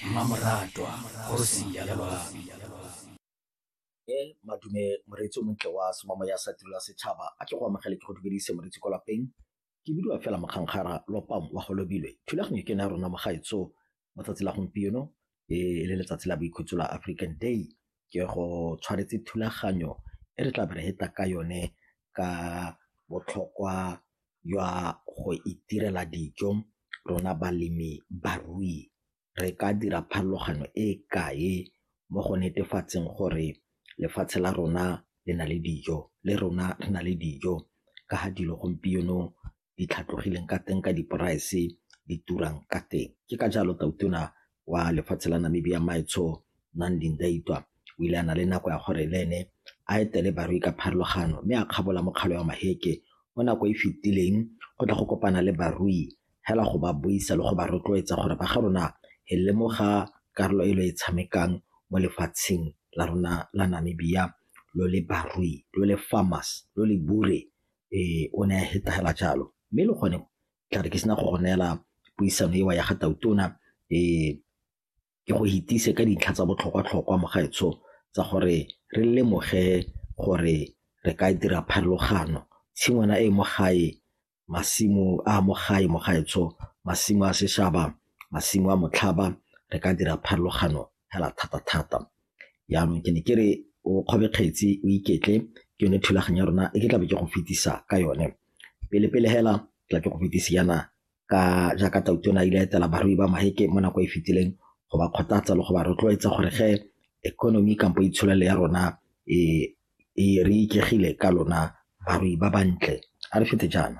mmamoratwa kgosi ya lelwang e madume moreetsi o montle wa semamo ya sa tirela setšhaba a tle go amogele ke go dumedise moreetsi kwa lapeng ke bidiwa fela mokgankgara lopam wa go lobilwe thulaganyo ke ne ya rona mogaetso mo tsatsi la gompieno e le letsatsi la boikhutso la african day ke go tshwanetse thulaganyo e re tla be re heta ka yone ka botlhokwa jwa go itirela dijo rona balemi barui re ka dira pharologano e kae mo go netefatseng gore lefatshe la rona le na le dijo le rona re na le dijo ka ga dilo gompieno di tlhatlogileng ka teng ka di-price di turang ka teng. Ke ka jalo Tautona wa lefatshe la Namibia Maetsho Nandi Ndaitwah o ile a na le nako ya gore le ene a etele barui ka pharologano mme a kgabola mokgalo wa Maheke mo nako e fetileng go tla go kopana le barui hela go ba buisa le go ba rotloetsa gore ba ga rona e lemoga karolo e lo e tshamekang mo lefatsheng la rona la Namibia lo le barui lo le farmers lo le bure ee o ne a hetagela jalo mme le gone tlare ke sena go go neela puisano eo ya ga Tautona ke go itise ka dintlha tsa botlhokwa-tlhokwa mo gaetsho tsa gore re lemoge gore re ka dira pharologano. Tshingwana e mo gae, masimo a mo gae mo gaetsho, masimo a seshaba, masimo a motlhaba re ka dira pharologano hela thata-thata. Jaanong ke ne ke re o kgobe kgetsi o iketle ke yone thulaganyo ya rona e ke tlabe ke go fetisa ka yone. Pele-pele hela tla ke go fetisi yana ka jaaka Tautona ile etela barui ba Maheke mo nako e fetileng go ba kgothatsa le go ba rotloetsa gore ge economy kampo itsholelo ya rona e re ikegile ka lona barui ba bantle a re fete jaana.